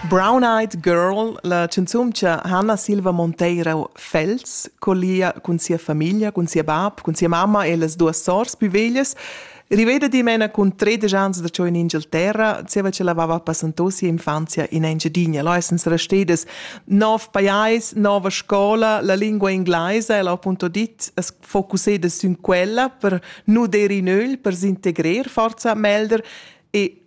Brown-Eyed Girl, la canzun cha Hanna Silva Monteiro Fels collia cun sia famiglia, cun sia bab, cun sia mamma e las duas sours plü veglias, riveda dimena cun tredisch ans da ciò in Inghilterra, zieva cha l'avava passanto sia infanzia in Engiadina. Là essens restedas nov pajais, nova scola, la lingua inglesa, el ha appunto dit, es focusseda sün quella per nu der in öl, per s'integrer forza melder e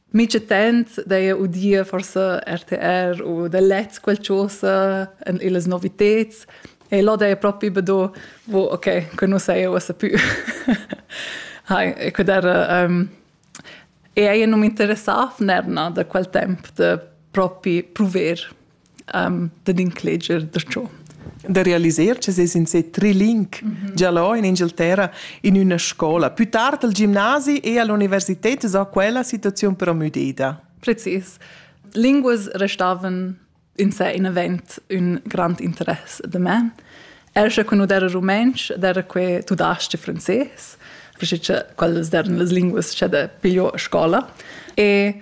Mica tant d'eir udia forsa RTR u da lets qualchosa en illas noviteds e là d'eir propi be do wo okay, que nu saja uossa pü. Hai, e que d'eira um, eir ün nom interessà f'nerna da quel temp da propi pruver um, dad incleger darcho da realiser che ses in se trilink mm -hmm. già là in Inghilterra in una scola più tard al gimnasi e all'università sa quella situazione però müdeda precis linguas restavan in sé in event un grand interesse de me er che quando era rumenc era que tu das de francés perché quelles erano le linguas che de pigliò a scuola e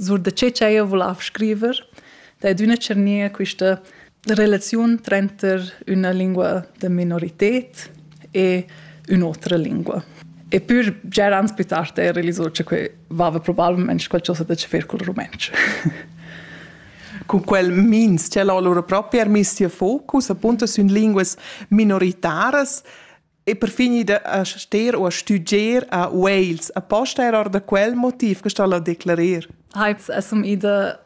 Sur da che ch'eir vulav scriver, da ed üna tschernia quista relaziun tranter üna lingua da minorited e ün'otra lingua. E pür già ans plü tard eir realisò cha que vaiva probabilmente qualchosa da che fer col rumantsch. Con quel mins, c'è l'allora proprio er miss tia focus, appunto, sün linguas minoritaras, e per fin ida a ster u a stuger a Wales. Aposta era or da quel motiv che sta a declarer. Heiz essum ida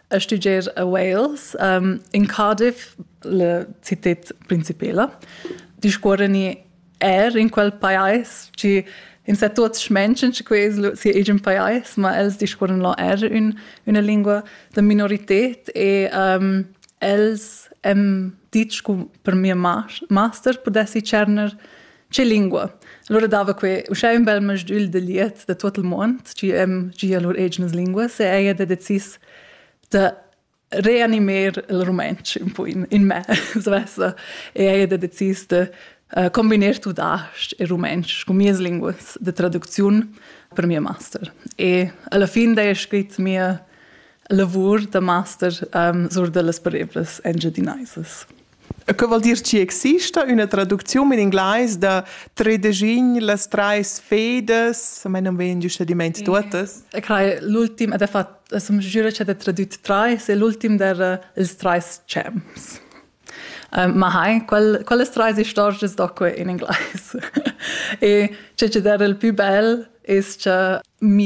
a stuger a Wales um, in Cardiff, la città principala. Discuorani er in quel pais ci in sa tuots menschen ci ques si egin pais, ma els discuoran lo er un, una lingua da minorität e um, Els han ditg che per mia master pudessi tscherner tge lingua. Allora dava quei uschè un bel masdül de liet de tot il mond, tgi hem gia lur egnas linguas e ella ha decis de reanimer il rumantsch un po in, in me, svessa, e ella ha decis de uh, combinar tudasc e rumantsch con mias linguas de traducziun per mia master. E alla fin da è scrit mia lavur da master um, sur dellas parebras engiadinaisas. E che vuol dir ci exista una traduzione in inglese da tredegin las treis fedas, a me non vien giusto di mente totes. E crai l'ultim ed è fatto som giura c'è tradotto treis e l'ultim der els treis champs. ma hai, qual, quelle treis stories doque in inglese. e c'è c'è der il più bel es che mi